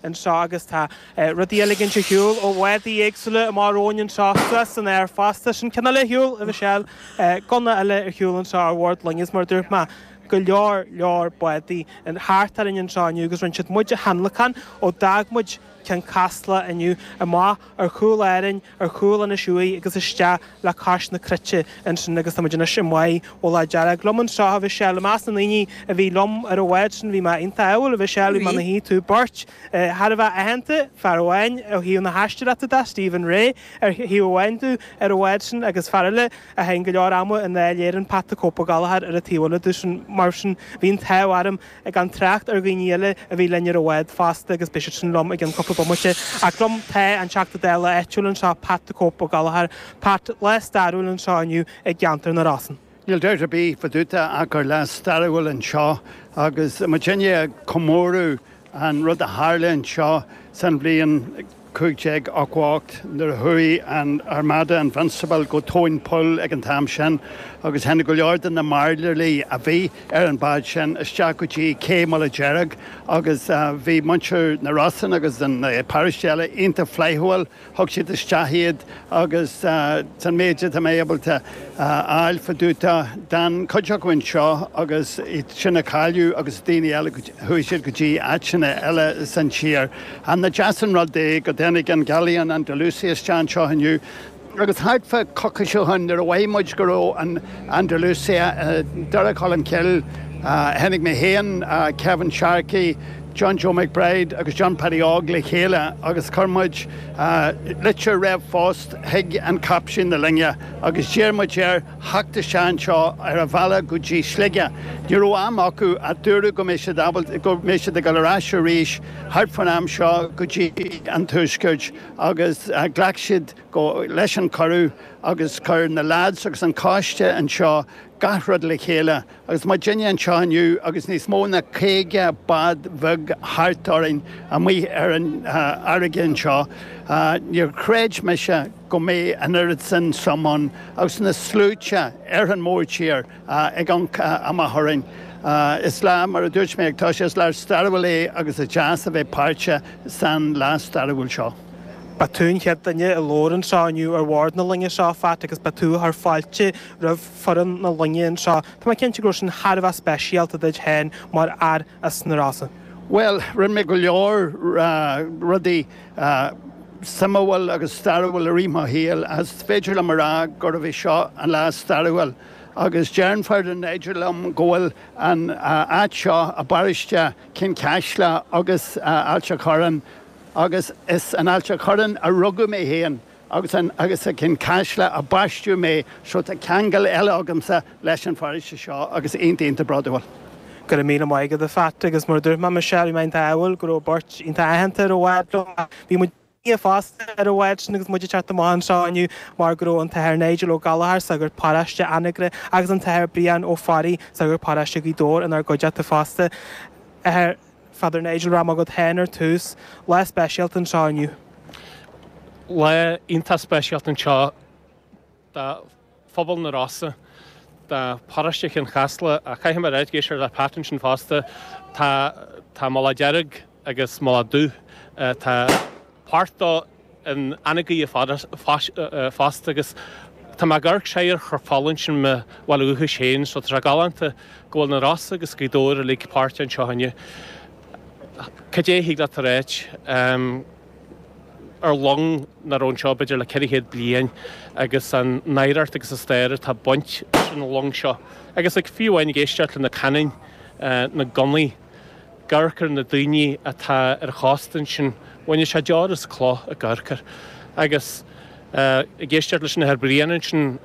anseo agus tá rudaí á ligint ar shiúl ó bhádaí éagsúla amach romhainn anseo, suas san aer fosta. Sin ceann eile ar shiúl, a Mhichelle. Gunna eile ar shiúl anseo ar bhord loinge is mar a dúirt mé, go leor leor bádaí thart orainn anseo inniu agus rinne siad muid a thionlacan ó d'fhág muid Ceann Caslach inniu, amach ar chúl Árainn. ar chúl Inis Uaigh agus isteach le cois na Cruite ansin agus táimid anois i mBá Mhullach Dearg. Liom anseo, a Mhichelle, i measc na ndaoine a bhí liom ar an bhád sin bhí mé iontach ádhúil, a Mhichelle, mar a tchí tú, beirt thar a bheith aitheanta, fear amháin ó thaobh na haisteoireachta de, Stephen Rea ar thaobh amháin domh ar an bhád sin agus fear eile a chaitheann go leor ama i nDáil Éireann, Pat the Cope Ó Gallchóir ar an taobh eile domhsa. Mar sin bhí an t-ádh orm. gan trácht ar dhaoine eile a bhí linn ar an bhád fosta agus beidh siad sin liom i gcionn cúpla bomaite. Ach liom tá an Teachta Dála áitiúil anseo, Pat 'the Cope' Ó Gallchóir. Pat, lá stairiúil anseo inniu i gceantar na Rosann. Níl dabht ar bith fá dtaobh de ach gur lá stairiúil anseo agus muidinne ag comóradh an rud a tharla anseo san bhliain, 1588, nuair a chuaigh an Armada Invincible go tóin poill ag an t-am sin, agus tháinig go leor de na mairnéalaigh a bhí ar an bhád sin isteach go dtí cé Mullach Deirg, agus bhí muintir na Rosann agus na paróistí eile iontach flaithiúil, thug siad isteach iad agus an méid atá mé ábalta a fháil fá dtaobh de, d'fhan cuid acu anseo agus iad sin a cailleadh agus daoine eile, chuaigh siad go dtí áiteanna eile san tír. Nach deas an rud é go dtáinig an Galleon Andalucia isteach anseo inniu, agus thart fá choicís ó shin, nuair a mhothaigh muid go raibh an Andalucia i nDoire Cholm Cille, tháinig mé féin, Kevin Sharkey, John Joe McBride agus John Paddy Óg le chéile agus chuir muid litir ríomhphost chuig an chaiptín na loinge agus d'iarr muid air theacht isteach anseo ar a bhealach go dtí Sligeach. Ní raibh am acu ach dúradh go mbeidh siad ábalta, go mbeidh siad ag dul ar ais arís thart fán am seo go dtí an Tuaisceart agus ghlac siad go, leis an chuireadh agus chuir na leaids agus an coiste anseo gach rud le chéile. Agus muidinne anseo inniu, agus níos mó ná caoga bád bheag thart orainn amuigh ar an fharraige anseo, níor chreid mise go mbeadh an oiread sin suim ann agus na sluaite ar an mórthír ag amhanc amach orainn. Is lá, mar a dúirt mé ag toiseacht, is lá stairiúil é agus is deas a bheith páirteach san lá stairiúil seo. Ba tú an chéad duine a labhair anseo inniu ar bhord na loinge seo, a Phat, agus ba tú a chuir fáilte roimh. foireann na loinge anseo. Tá mé cinnte go raibh sin thar a bheith speisialta duit féin mar fhear as na Rosa. Bhuel, rinne mé go leor rudaí suimiúil agus stairiúil i rith mo shaoil agus is féidir liom a rá gurbh é seo an lá is stairiúil agus deireann Father Nigel liom go bhfuil an áit seo i bparóiste Chionn Caslach agus Ailt an Chorráin agus is in Ailt an Chorráin a rugadh mé féin. agus an agus i gCionn Caslach a baisteadh mé so tá ceangal eile agamsa leis an pharóiste seo agus iontach iontach bródúil. Go raibh míle maith agat a Phat agus mar a dúirt mé Michelle bhí mé iontach ádhúil go raibh beirt iontach aitheanta ar an bhád seo ach bhí Dia linne fosta ar an bhád sin agus muid ag teacht amach anseo inniu mar go raibh an tAthair Nigel Ó Gallachóir, sagart paróiste Anagaire agus an tAthair Brian Ó Fearraigh, sagart paróiste Ghaoth Dobhair inár gcuideachta fosta. Athair. Father Nigel rachaidh mé chugat féin ar tús. Lá speisialta anseo inniu. Lá iontach speisialta anseo do phobal na Rosa, do Pharóiste Chionn Caslach. Ach caithfidh mé a rá, ag éisteacht le Pat ansin fosta, tá Mullach Dearg agus Mullach Dubh, tá páirt in Anagaire fosta agus tá mé ag amharc soir ar Chnoc Fola ansin mo bhaile dúchais féin so tá sé galánta go bhfuil na Rosa agus Gaoth Dobhair uilig páirteach anseo inniu. Cad é a thig leat a ráit ehm ar long nach raibh anseo b'fhéidir le ceithre chéad bliain agus an oidhreacht agus an stair atá ag baint leis an long seo agus like fiú amháin ag éisteacht le na cannon eh na gunnaí ag amharc ar na daoine atá ar an chósta ansin. Bhainfeadh sé deor as cloch ag amharc air agus ag éisteacht leis an Athair Brian ansin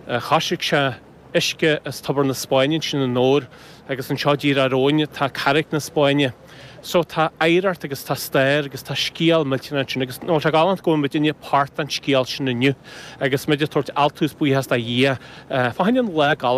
choisric sé uisce as Tobar na Spáinne ansin anoir agus anseo díreach romhainn tá Carraic na Spáinne. So tá oidhreacht agus tá stair agus tá scéal millteanach ansin agus nach bhfuil sé galánta go bhfuil muid uilig páirt den scéal sin inniu agus muid ag tabhairt altú is buíochas do Dhia fá choinne an lá galánta